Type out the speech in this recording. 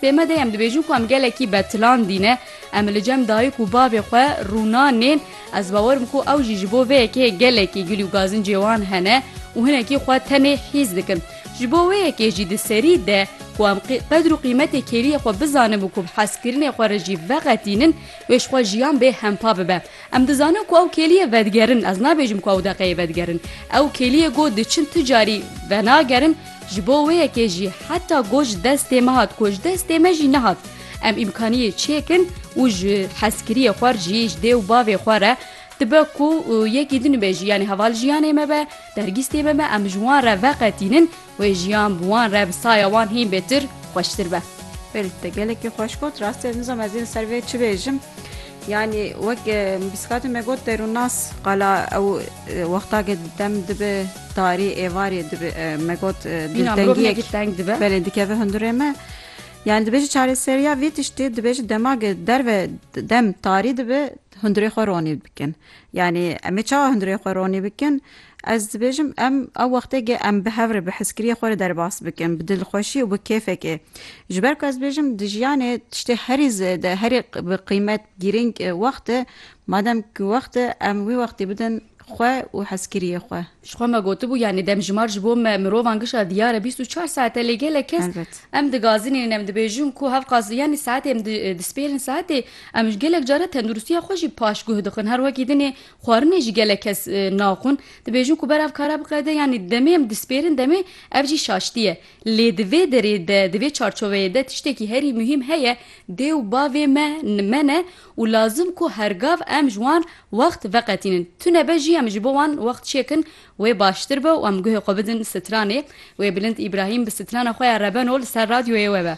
Dê me de em dibêjin ku em gelekî betlandî ne. Em li cem dayik û bavê xwe rûna nên. Ez bawer im ku ew jî ji bo vê yekê gelekî gilî û gazincê wan hene û hinekî xwe tenê hîs dikin. Ji bo wê yekê jî di serî de ku em qedr û qîmetê kêliyê xwe bizanin û ku bi hezkirinê xwe re jî veqetînin wê ji xwe jiyan bê hempa bibe. Em dizanin ku ew kêliyê vedigerin, ez nabêjim ku ew deqeyê vedigerin. Ew kêliyê got diçin tu carî venagerin, ji bo wê yekê jî heta got ji destê me hat ku ji destê me jî nehat. Em îmkaniyê çêkin û ji hezkiriyê xwe re jî ji dê û bavê xwe re dibe ku yekî din be jî yanî heval jiyanê me be, dergîstê me be em ji wan re veqetînin, Wê jiyan bi wan re bi saya wan hîn bêtir xweştir be. Belê te gelekî xweş got. Rastê nizam ez ê ser vê çi bêjim. Yanî wek bîskatê me got derûnnas qala ew wextake dem dibe tarî êvarê dibe me got diltengiyek teng dibe. Belê dikeve hundirê me. Yani dibêjî çareseriya vê tiştê dibêjî demage derve dem tarî dibe hundirê xwe ronî bikin. Yani em ê çawa hundirê xwe ronî bikin? Ez dibêjim em ew wexteke em bi hev re bi hezkiriyê xwe re derbas bikin, bi dilxweşî û bi kêfekê. Ji ber ku ez dibêjim di jiyanê tiştê herî zêde, herî bi qîmet, girîng wext e. Madem ku wext e em wî wextî bidin xwe û hezkiriyê xwe. Ji xwe me gotibû yanî demjimar ji bo me mirovan gişa diyar e bîst û çar saet e lê gelek kes em digazinînin em dibêjin ku hev qas yanî saetê em dispêrin saetê em gelek care tenduristiya xwe jî paşguh dixin her wekî dinê xwarinê jî gelek kes naxwin, dibêjin ku ber ev kara biqede yanî demê em dispêrin demê ev jî şaştî ye. Lê di vê derê de, di vê çarçoveyê de tiştekî herî muhîm heye, dê û bavê me me ne û lazim ku hergav em ji wan wext veqetînin. Tune be jî em ji bo wan wext çêkin wê baştir be û em guhê xwe bidin stranê. Wê Bilind Îbrahîm bi strana xwe ya Rebeno li ser radyoyê we be.